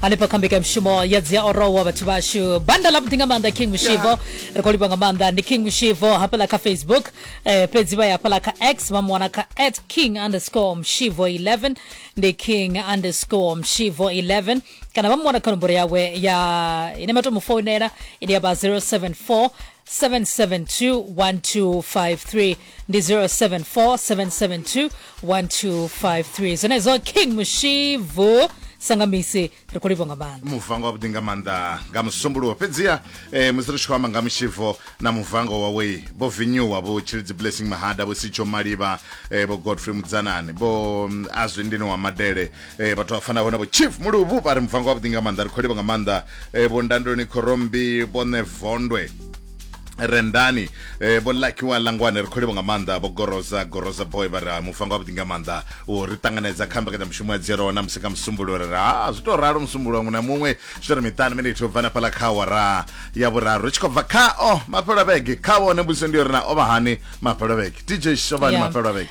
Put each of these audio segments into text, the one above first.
hanefha kha mbekanyamushumo ya dzi a orowa vhathu vhashu banda ḽa vhuḓi nga maanḓa king mushivo ri khou livha nga maanḓa ndi king mushivo hafhaḽa kha facebook eh, fhedzi vha ya hafhaḽa kha x vha mu wana kha at king underscore mushivo 11 ndi king underscore mushivo 11 kana vha mu wana kha nomboro yawe ya ine vha tou mu founela ine ya vha 074 772 1253 ndi 0747721253 zvenezo king mushivu sangamisi ri khou livho nga maanḓa muvango wavhuḓi nga maanḓa nga musumbuluwo fhedziha eh, musi ri tshi khou amba nga mushivo na muvango wawe vho vinyuwa vho tshilidzi blessing mahada vho sitsho malivha eh, vho godfrey mudzanani vho mm, azwi ndini wa madele eh, vhathu vha fanaho na vho chief muluvhu vha ri muvango wavhuḓi nga maanḓa ri khou livho nga maanḓa eh, vho ndandoni khorombi vho nevondwe rendani eh, vho lakiwa langwane ri khou livha nga maanḓa vho goroza goroza boy vha ri ha mufanga wavhuḓi nga maanḓa u ri ṱanganedza kha mbekanyamushumo ya dzero na musi kha musumbulo ri ri ha zwi tou ralo musumbulo muṅwe na muṅwe zwi ri miṱanu miniti u bva na fhaḽa kha wara ya vhuraru ri tshi khou bva khao mafhelo a vhege kha vhone mbudziso ndi yo ri na o vha hani mafhelo a vhege dj shovhani Yeah. mafhelo a vhege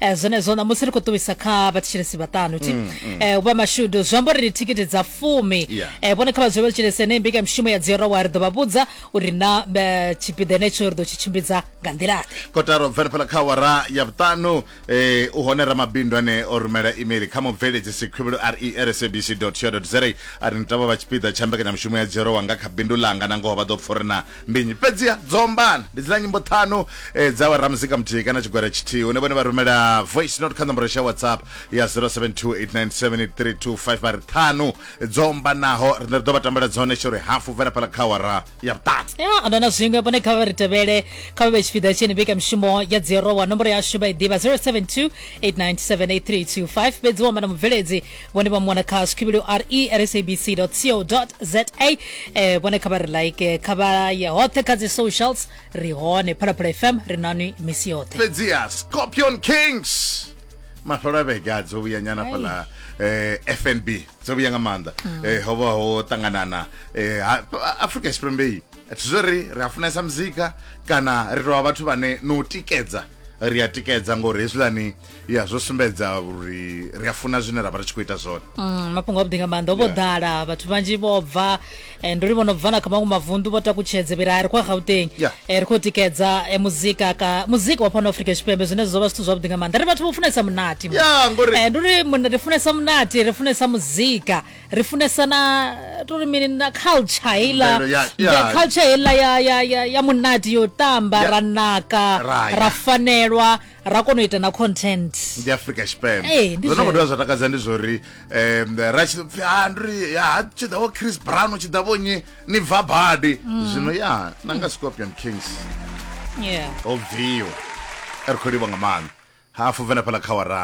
eh, zwenezwo ṋamusi ri khou ṱuwisa kha vhathetshelesi vhaṱanu ti mm, mm. eh, u vha mashudu zwi amba uri ri thikhithi dza fumi yeah. eh, vhone kha vhadzule vhathetshelesi ene mbika mishumo ya dziorowa ri ḓo vha vhudza uri na eh, tshipiḓa henetsho ri ḓo tshi tshimbidza nga nḓilaḓe kotaro bvelaphala kha wara ya vhuṱanu eh, u hone ramabindu ane o rumela email kha mubveledzisi khuvhelo resabc co za a ri ni tavha vha tshipiḓa tsha mbekanyamushumo ya dziorowa nga kha bindu langa na ngoho vha ḓo pfurina ndi nnyi fhedziha dzo ombana ndi dzina nyimbo ṱhanu eh, dza ramuzika muthihi kana tshigwada tshithihi hune vhone vha rumela voice note kha nomboro ya whatsapp ya 0728978325 vha ri ṱhanu dzo ombanaho ri ḓo vha tambela dzone tsho ri hafu bvela phala kha awara ya vhuṱanu ya ano na zwiṅwe vhone kha vha ri tevhele kha vha vhe tshipiḓa tsheni vhika mishumo ya dzirowa nomboro yashu vha i ḓivha 0728978325 fhedzi wa mana mubveledzi vhone vha mu wana kha skhivhilo re at sabc co za eh, vhone kha vha ri like kha vha ye hoṱhe kha dzi socials ri hone phalaphala fm ri nani misi yoṱhe fhedziha scorpion kings mafhelo a vhege a dzo vhuya nyana fhaḽa eh, fnb dzo vhuya nga maanḓa mm. eh, ho vha ho ṱanganana eh, afrika tshipembeyi thi zwo ri ri a funesa muzika kana ri tovha vhathu vhane no tikedza ri a tikedza ngori hezwiḽani ya zwo sumbedza uri ri a funa zwine ra vha ri tshi khou ita zwone Mm, mafhungo avhuḓi nga maanḓa o vho ḓala vhathu vhanzhi vho bva eh, ndo ri vho no bva na kha maṅwe mavunḓu vho takutshedze vhira ri khou ya gauteng Yeah. Eh, ri khou tikedza eh, muzika ka muzika wa fhano afrika tshipembe zwine zwo vha zwithu zwavhuḓi nga maanḓa ri vhathu vho funesa munati mo. Ya, ngori- Eh, ndo ri mun- ri funesa munati ri funesa muzika ri funesa na tori mini na culture heiḽa Mvelelo ya- ya- the culture heiḽa ya, ya, ya, ya munati yo tamba Ya. ra naka Ra ya. ra fanelwa ra kona u ita na content ndi africa tshipembe ee ndi zwono khou dovha zwa takadza ndi zwo ri um ra tshi pfi ha ndi ri ya ha tshi ḓa vho chris brown u tshi ḓa vho nyi ni bva badi zwino ya na nga scorpion kings yeah ho bviwa ri khou livha nga maanḓa hafu venefhala kha wara